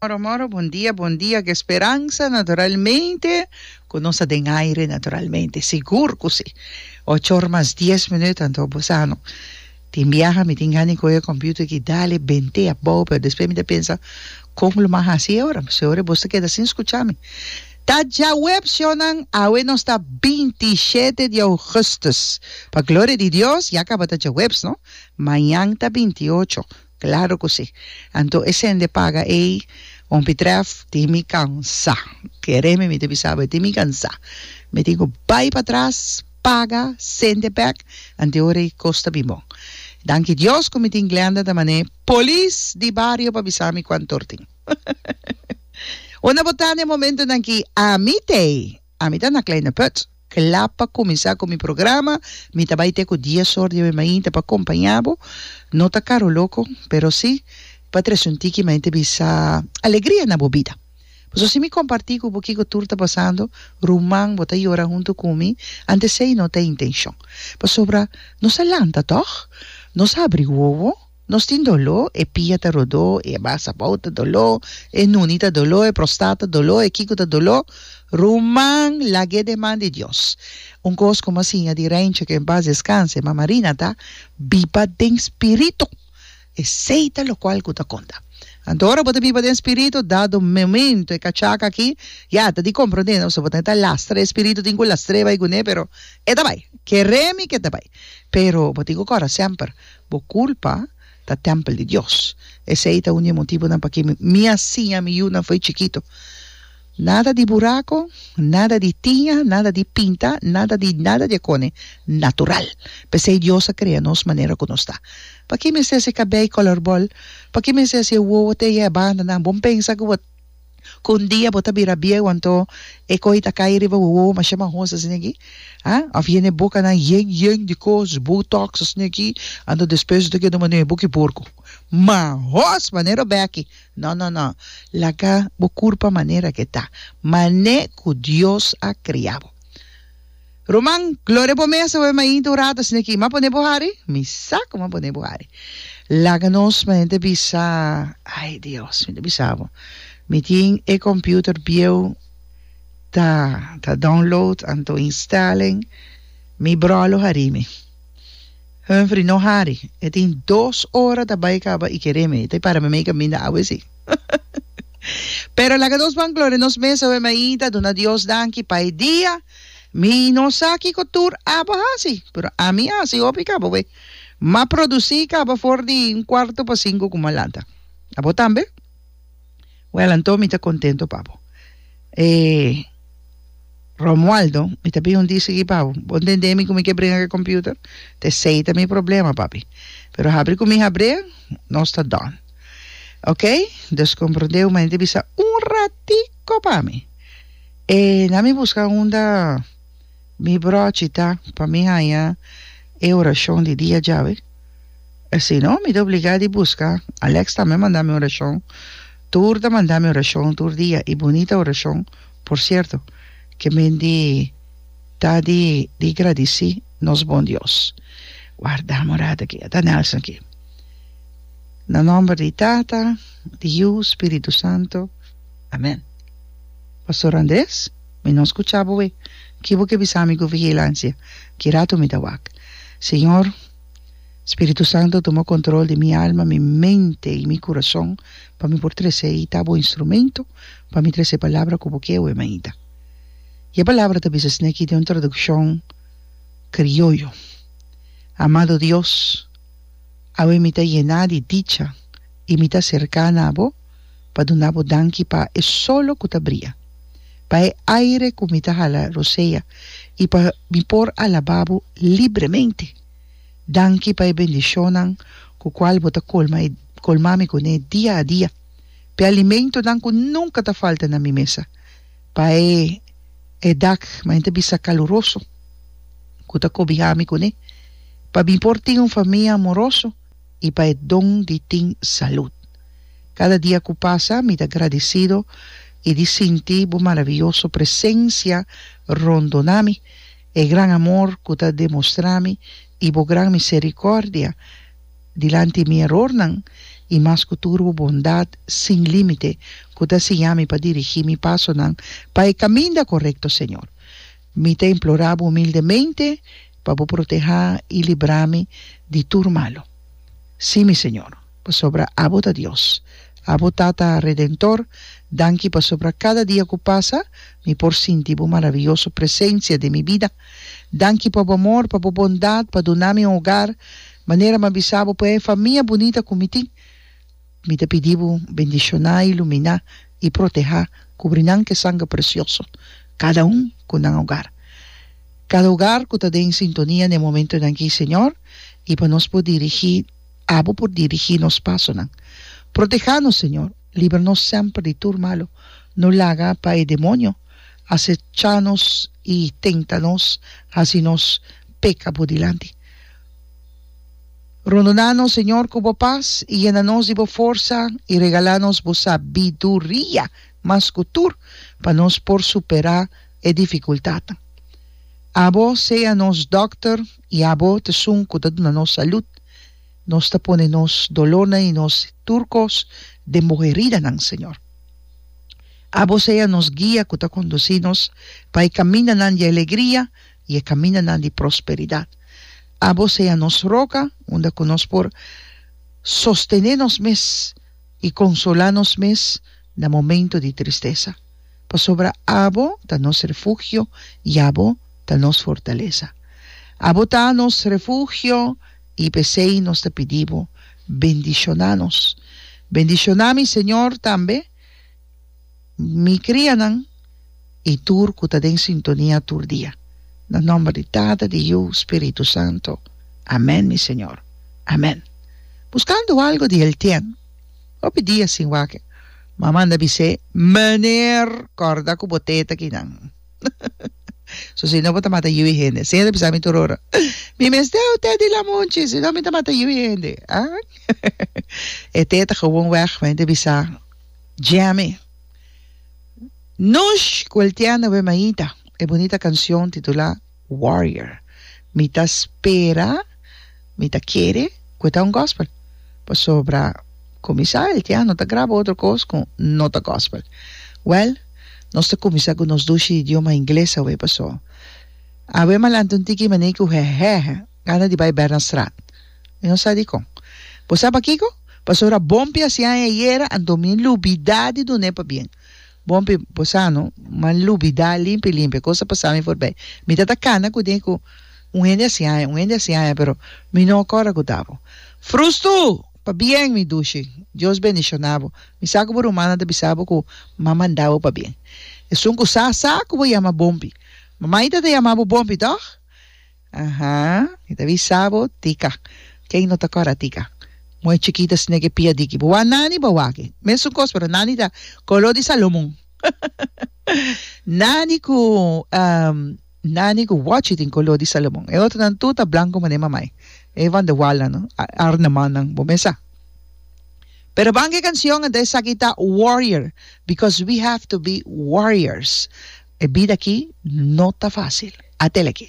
Moro moro bon dia bon dia ke speransa naturalmente ku nos ta den aire naturalmente sigur ku si ocho or mas dies minüt anto bosano tin biaha mi tin gana kohe computer ki dale bente abou pero despues mi ta pensa kon lo mas hasi e ora p'esei ora bos ta keda sin skucha mi ta djaweb shownan awe nos ta binti shete di ougustus pa gloria di Dios ya kaba ta djawebs no mañan ta binti ocho Claro cu si. Anto e sende paga ey hopi tref tin mi cansa. Kereme mi ta bisa bo e tin mi cansa. Mi tin cu bay pa tras, paga, sende bek, anto ora ey cos ta bin bon. Danki Dios cu mi tin Glenda ta mane polis di bario pa bisa mi cuanto or tin. Una botana e momentonan ki ami tey. Ami ta na Kleine Put. Kla pa kuminsá ku mi programa, mi ta bai te ku dies or di awemainta pa kompañá bo. No ta karu loko, pero sí pa trese un tiki maente bisa alegria na bo bida. Pasobra si mi kompartí ku bo kiko tur ta pasando, ruman bo ta yora huntu ku mi, antes esei no ta e intenshon. Pasobra nos a lanta, tòg? Nos a abri wowo? Nos tin doló, e pia ta rodó, e abasabou ta doló, e nuni ta doló, e prostat ta doló, e kico ta doló. Ruman, lag'é den man di Dios. Un cos como a siña di Reinche, que en paz descanse, Mama Rina ta biba den spirito. Esey ta locual cu ta conta. Anto ora bo ta biba den spirito, dado momento e cachaca aki, ya, ta di comprende, no? So bo ta neta lastra e spirito, tin cu lastr'é bai cu ne, pero e ta bai. Keré mi cu e ta bai. Pero bo tin cu cora semper. Bo kulpa ta tèmpel di Dios. Esei ta un di e motibunan pakí mi a siña mi yunan fo'i chikitu, Nada di burako, nada di tiña, nada di pinta, nada di nada di akone natural. P'esei Dios a krea nos manera ku nos ta. Pakí mester si kabei kòlòr bòl? Pakí mester si e wowo te eye e bandanan? Bon pensa ku bo. Cu un dia bo ta bira bieu anto e cohi ta cay riba bo wowo masha mahoso asina aki, ha? Of yene bocanan yen yen di cos, botox asina aki, anto despues bo ta keda un manera bo ki porco. Mahos! Manera obeki. No no no. Laga bo curpa manera ke ta, mane cu Dios a cria bo. Ruman, gloria bo mester web mainta un rato asina ki ma pone bo hari? Mi sa ku ma pone bo hari. Laga nos mainta bisa, ai Dios, mi ta bisa bo, mi tin e computer bieu ta ta download anto instelling, mi bro lo hari mi. Humphrey no hari, e tin dos ora ta bai kaba i kere mi, ta para mi mei kaminda awe esi. Pero laga nos ban gloria nos mester web mainta, duna Dios danki pa e dia. Mi no sa kiko tur abo hasi, pero ami hasi hopi kaba we. M'a produsí kaba for di un kuarto pa sinku ku m'a lanta. Abo tambe? Wèl, anto mi ta kontentu pa bo. E Romualdo, mi ta bin un di sigui pa bo. Bo ntendé mi ku mi ke bringa ku e kòmpiuter? Ta esei ta mi problema, papi. Pero habri ku mi habr'é, nos ta dòn. Oké, dus komprondé, hu mañana ta bisa un ratiko pa mi. E na mi busca unda mi brochi ta pa mi haya e oracion di dia djawe e si no mi ta obliga di busca Alex tambe manda mi oracion tur ta manda mi oracion tur dia y bunita oracion por cierto ke men di ta di di gradici nos bon Dios guardami un rato aki ata Nelson aki na nomber di tata di yu spiritu santo. Amen. Pastor Andres, mi no scucha bo we. Ki bo ke bisa mi cu vigilancia? Ki rato mi ta wak. Señor, Spiritu Santo tuma control di mi alma, mi mente y mi curason pa mi por trece y ta bo instrumento pa mi trece e palabra cu bo ke we mainta. Y e palabra ta bisa sneki den un traduccion crioyo. Amado Dios, awe mi ta yena di dicha y mi ta cerca na bo. pa duna bo danki pa e solo ku ta bria, pa e aire ku mi ta hala Rosea i pa mi por alabá bo libremente. Danki pa e bendishonnan ku kual bo ta kolma e kolmá mi kuné dia a dia, p'e alimentonan ku nunka ta falta na mi mesa, pa e e dak, mañana bisa kaluroso, ku ta kobihá mi kuné, pa mi por tin un famia amoroso, i pa e don di tin salud. Kada dia ku pasa mi ta gradisido i di sinti bo maraviyoso presensia rondona mi, e gran amor ku ta demostrá mi i bo gran miserikòrdia dilanti mi erornan i mas ku tur bo bondat sin límite ku ta siña mi pa dirigí mi pasonan pa e kaminda korekto, Señor. Mi ta implorá bo humildemente pa bo protehá i librá mi di tur malu. Sí, mi Señor, pasobra abo ta Dios, abo Tata Redentor, danki pasobra kada dia ku pasa mi por sinti bo maravioso presensia den mi bida. Danki pa bo amor, pa bo bondat, pa duna mi un hogar manera mi a bisa bo, pa e famia bunita ku mi tin. Mi ta pidi Bo, bendishoná, iluminá i protehá, kubri nan ku e sangre presioso, kada un ku nan ogar, kada ogar ku ta den sintonia n'e momentunan akí, Señor, i pa nos por dirigí, abo por dirigí nos pasonan. Protehá nos, Señor, libra nos semper di tur malu, no laga pa e demonio asechá nos i tenta nos hasi nos peka Bo dilanti. Rondona nos, Señor, cu bo paz, y yena nos di bo forsa, y regala nos bo sabiduria mas cu tur, pa nos por supera e dificultadnan. Abo sea nos dokter, y abo t'esun cu ta duna nos salud. Nos ta pone nos dolornan y nos tur cos den bo heridanan, Señor. Abo sea nos guia cu ta conduci nos pa e camindanan di alegria, i e kamindanan di prosperidat. Abo sea nos roka unda ku nos por sostené nos mes i konsolá nos mes na momentu di tristesa, pasobra abo ta nos refugio i abo ta nos fortalesa. Abo ta nos refugio i p'esei nos ta pidi bo, bendishoná nos. Bendishoná mi Señor tambe. Mi crianan y tur cu ta den sintonia tur dia. Na nomber di Tata, di Yu, Spiritu Santo. Amen, mi Señor. Amen. Buscando algo di el tien. Hopi dia sin wake. Ma manda bis'é, Meneer, corda cu bo teta kinan. So si no bo ta mata yu'i hende. Siña ta bisa mi tur ora, Mi mester e teta di lamunchi, si no mi ta mata yu'i hende. Ah? E teta gewoon weg, mei ta bisa. Jammy. Nos welteando we maita e bonita cancion titula Warrior. Mi ta spera, mi ta kere cu e ta un gospel. Pasobra cuminsa el te ano ta graba otro cos cu no ta gospel. Well, nos ta cuminsa cu nos dushi di idioma ingles awe paso. Awe malanti un tiki i manei cu hehehe gana di bay ber na straat. Mi no sa dikon. Bo sa pakiko? Pasobra Bompi a siña e ayera, anto mi lubidá di dun'é pabien. Bompi, bo sa no, mi a lubidá limpi limpi. E kos a pasami for bei. Mi ta ta kana ku den ku un hende a siña e, un hende a siña e, pero mi no a kòrda ku ta bo. Frustu! Pabien, mi dushi. Dios bendishoná bo. Mi sa ku bo rumana ta bisa bo ku mama a nda bo pabien. Esun ku sa sa ku bo yama Bompi. Mama i tata yama bo Bompi, tòg? Aha, mi ta bisa bo, tika. Kei no ta kora tika? Muhe chikita sne ke pia diki bo wak nani bo waki. Mesun kos pero nani ta kolo di Salomon. Nani ku nani ku wochi tin kolo di Salomon. E otronan tur ta blanku mane mamai. E van de wal nan no. Arnemannan. Bo mes sa. Pero banca e cancion enta esaki ta warrior because we have to be warriors e bida aki no ta facil. Atele aki.